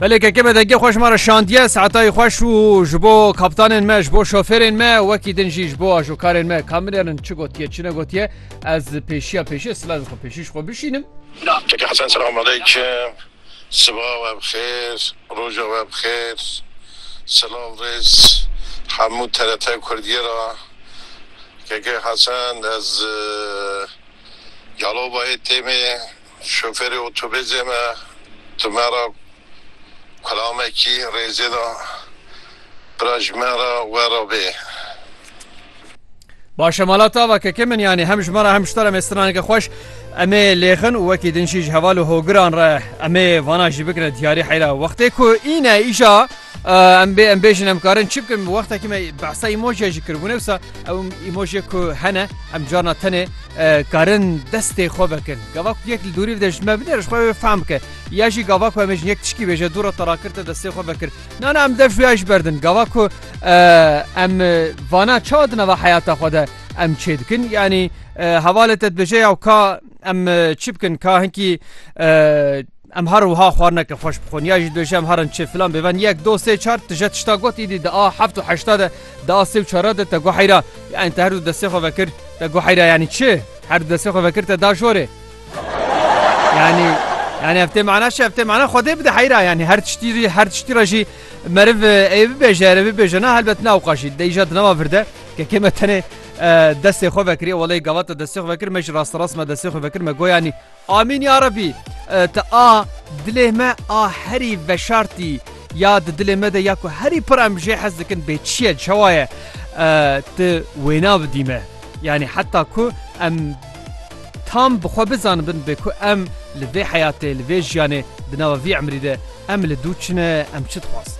Belê keke me dengê xweş mara şandiye saetayî xweş û ji bo kaptanên me ji bo şoferên me wekî din jî ji bo ajokarên me kamilêrin çi gotiye çi ne gotiye ez pêşiya pêşiye silavê xwe pêşî ji xwe bişînim. Keke Hesen selamaleyküm siba we bixêr roja we bixêr silav rêz hemû TRT Kurdiye ra Keke Hesen ez Yalobayê têmê Şoferê otobêzê me di me re kulamekî rêzê da, bira ji me re were bê. Baş e mala tava keke min yanî hem ji me re hem ji te re me straneke xweş em ê lêxin û wekî din jî ji heval û hogiran re em ê vana jî bikire diyarî heyra wextê ku îne îja em bê em bêjin em karin çi bikin wextekî me behsa îmojîya jî kiribûne wisa Ew îmojê ku hene em carna tenê karin destê xwe vekin. Gava ku yek li dûrî bide ji me bide ji xwe wê fehm bike. Ya jî gava ku em ê ji yek tişkî bêje dû re te rakir te destê xwe vekir. Nana em dev xuya ji ber din. Gava ku em vana çawa di nava heyata xwe de em çê dikin yanî hevalê te dibêje yaw ka em çi bikin ka hinkî Em her wiha xwarineke xweş bixwin ya jî dibêje em herin çi filan bêven yek do sê çar tije tişta got îdî di a heft û heşta de di a sê û çara de te guheyra yanî te her du destê xwe vekir te guheyra yanî çi her du destê xwe vekir te da jorê yanî yanî ev tê mana çi ev tê mana xwedê bide heyra yanî her tiştî her tiştî re jî meriv ê bibêje erê bibêje na helbet na wqa jî de îja dinama vir de kekê me tenê destê xwe vekiriye welê gavata destê xwe vekir me jî rasterast me destê xwe vekir me goyanî Amîn ya Rebî! Ti a dilê me a herî veşartî ya di dilê me de ya ku herî pir em jê hez dikin bê çi ye çawa ye ti wêna bidî me yanî heta ku em tam bi xwe bizanibin bê ku em li vê heyatê li vê jiyanê di nava vî emrî de em li dû çi ne em çi dixwazin.